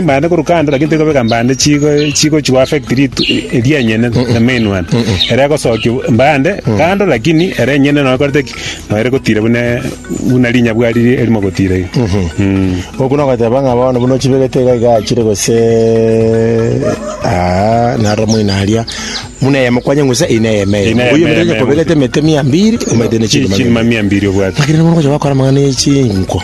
Mbande korwa kando lakini tikobeka mbande chigo chigo chigo affect litu eri enyene the main one ere gosoki mbande kando lakini ere enyene no korete ki no ere gotira bune buna linya bwari eri mogotira iri mm okuna goteba ng'a bono buna ochibegete iga iga achire gose aa naro moina aria muna ya mokwanye ngusa ina ya mei Ina ya oyo eme, mutenya eme, kobegete mete mia mbiri omete ne chiri chiri mamia mbiri obwate lakini bono gocha bakora mang'ana ye chinko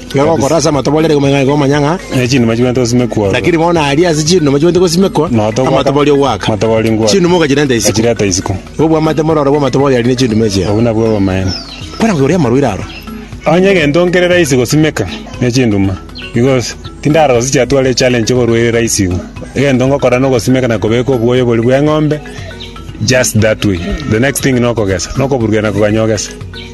Iga gokora ase amatoborero igoma igaiga omanya ng'a. Ne chinuma chibwente gosimekwa ororo. Lakini bono aria ase chinuma chibwente gosimekwa Nonya togwaka amatoborio goaka. amatoborio ngoaka. Chinuma ogachirenta isiko. Gachireta isiko. Igo bwamate mororo bw'amatoborio aria ne chinuma echio. Obwo nabwo obamaene. Kore ng'a oria amarwaire aro. Onye egento nkere raisi gosimeka ne chinduma, because tindarora gose chiatwara echallenge oborwaire raisi igo. Egento ngokora nogosimeka na kobeka obwoyo boria bw'eng'ombe just that way. The next thing nokogesa. Nokoburukia na koganya ogese.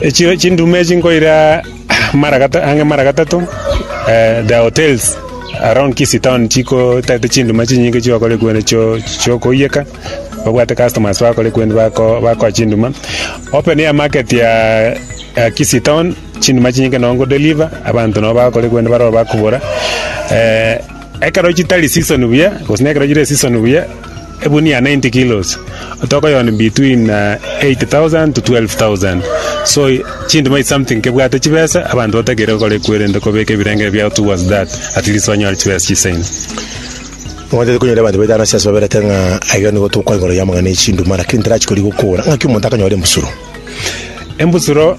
Echiro chinduma echi nkoira mara gata ang'e mara gatato eh, the hotels around Kisii town chiko tete chinduma chinyinge chigokora ekwende chio chiokoiyeka babwate customers bakora ekwende bako bakoa chinduma open air market ya ya Kisii town chinduma chinyinge nongo deliver abanto nabo bakora ekwende baroro bakobora eh, ekero chitari season buya gose nekero chire season buya egunia 90 kilos otoko yone between 8000 to 12000 so chinduma is something kebwate chibesa abanto batakeire gokora ekwerende kobeka ebirenge biao towards that at least banyore chibesa chisaine Omanyete konyora abanto baitano ase ase baberete ng'a aiga nigo tokwa igoro y'amang'ana ye chinduma, lakini terachi koria gokora ng'aki omonto akanyora embusuro. embusuro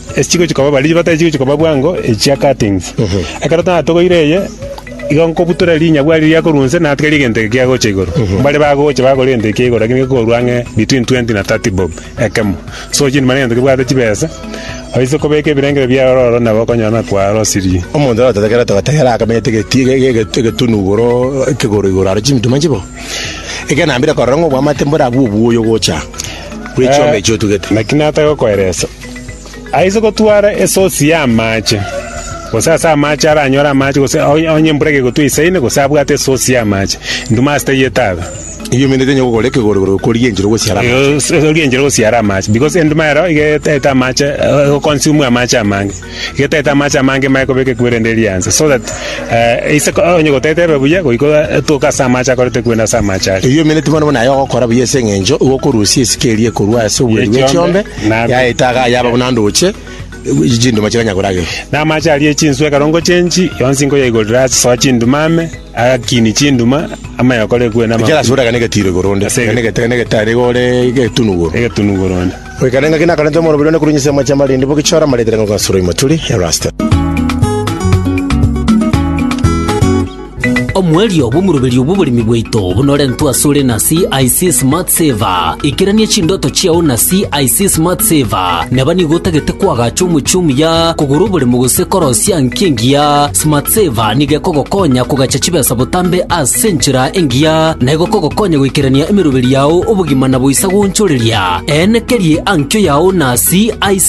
Ase chigochia koba baria chibatari chigochia koba bwango echia cuttings. Ekero natogoire eye, igo nkobutora rinyagwa riria riakorwa onse natigarie egento eke kiagocha igoro. Mbare bagocha bagore egento eke kia igoro lakini gekorwa ang'e between twenty na thirty bob ekemo. So chiri mani egento kebwate chibesa, oise kobeka ebirengererio biaye ororo nabo okonyora na kwarosirie. Omonto natote ekero togote ekero akamete egeti ege- ege- ege- egetunu igoro ekegoro igoro aro chimituma chibo. Ekero nambire korora ng'a obwamate mborabwo obuya ogocha bwe chioma echi otugete. Naki natagokoeresa. Aise gotwara esosi y'amaache, gose ase amaache aranyore amaache, gose onye embura egegotwa eisaine, gose abwate esosi y'amaache, induma ase taiyo etaga. Erio omene tanyara gokora ekegorogoro gokoria enchera gosiara amaache. Egoria enchera gosiara amaache, because enduma ero iga etaete amaache, egoconsume amaache amange. Iga etaete amaache amange emanye kobeka ekuwe rende eria anse, so that eise onye gotaete ebe buya, goika etoke ase amaache akoreta ekuwe na ase amaache aria. Erio omene timana buna aye ogokora buya ase eng'encho igo okorusia esike eria ekorwa ase obweru bw'echiombe. Na- yaeta iga yaba buna ndooche ye chinduma chitanya korageria. Na amache aria ye chinswe ekero ngochia enchi yonsi nkoyaigorera ase soa chinduma ame, agakiini chinduma, amayokore ekwe na Ekiagera amaguta. ekane getiro igoro onde, Ase ekane get- ekane getari igore egetunu igoro. Egetunu igoro onde. Goikana engaki nakorente omoroberi one korwa ense y'amache amarindi, bogichora amaretere ng'a Ogasurwa Imaturi, Erasto. Omoerio bw'omoroberio bw'oboremi bwaito bunorentwe asore na CIC Smart Saver. Ikerania chindoto chiao na CIC Smart Saver. Neba nigo otagete koagacha omochie omuya, kogora oboremo gose korosia nki engiya, Smart Saver nigo ekogokonya kogacha chibesa botambe ase enchera engiya na egokogokonya goikerania emeroberio yao obogima na boisa goonchoreria. Eene keria eankio yao na CIC.